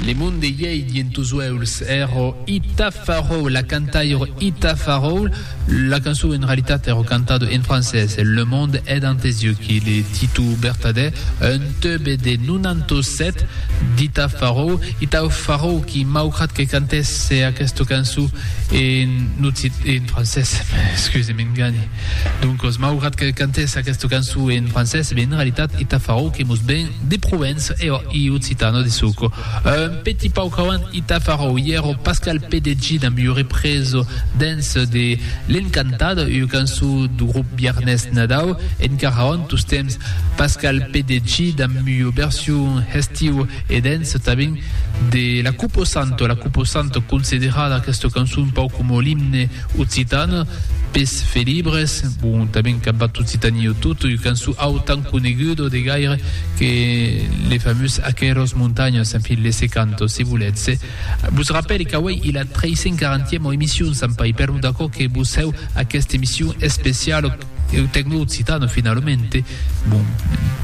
Le monde iei dient tos uèulhs ero Ita Farrow, la cantaire Ita Farrow. La cançon en realitat ero cantada en francés, Le monde est dans tes yeux, qui le titol bertadèr, un tube de 97 d'Ita Farrow. Ita Farrow qui, maugrat que cantèsse aquesta cançon, En occitan, en francés, excusem, en gani. Doncos, maugrat que cantes aquesta cançon en francés, ben en realitat ita farò que mos ven de Provença e òc, i occitano de suco. Un petit pauc avant ita farò, ièro Pascal Pedeggi damb ua represa dens de L'Encantada, ua cançon dau grop Biarnés Nadau, encara avant tostemps Pascal Pedeggi damb ua version hestiu E dens tanben de La Cupo Santo, La Cupo Santo considerada aquesta cançon pauc coma l'imne occitan pes felibres, bon tanben qu'ac bat Occitanie o tot, ua cançon autan coneguda de gaire que le famós Aqueros montanhos, en fin, laissez canto, se volètz. Vos rapèle qu'auei i la 340 ema emission, Sant Pai, per non d'aquò que vos heu aquesta emission especiala, Eth tecno occitano finalmente, bon,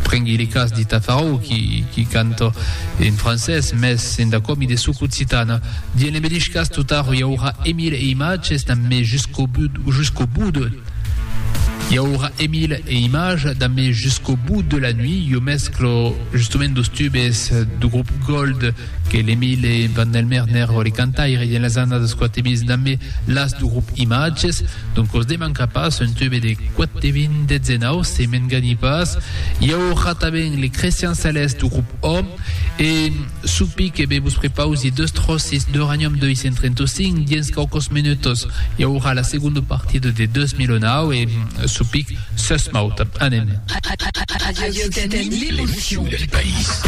prengui le cas de Tafarou qui canta en francés mès en dacòmi de soc occitana. Dien le medish cas totaro i aurà e mil e imatges damb me jusqu'au bout jusqu'au bout de i aurà e mil e imatges damb me jusqu'au bout de la nuit, jo mesclo justement dos tubes do grup Gold, que l'Emile Van Delmer n'ère lo cantaire de las annadas 420 dambe las du grup Imatges, donc os demanca pas un tube de 420 19 se m'engani pas, i aurà tanben le Crestian Celeste du grup Hom, e supi que be vos prepausi deus tròcis d'Uranium 235 dins quauquos menutos, i aurà la segonda partida de 2009 e supic s'esmauta. Anem. Radio Occitanie, l'émission du país.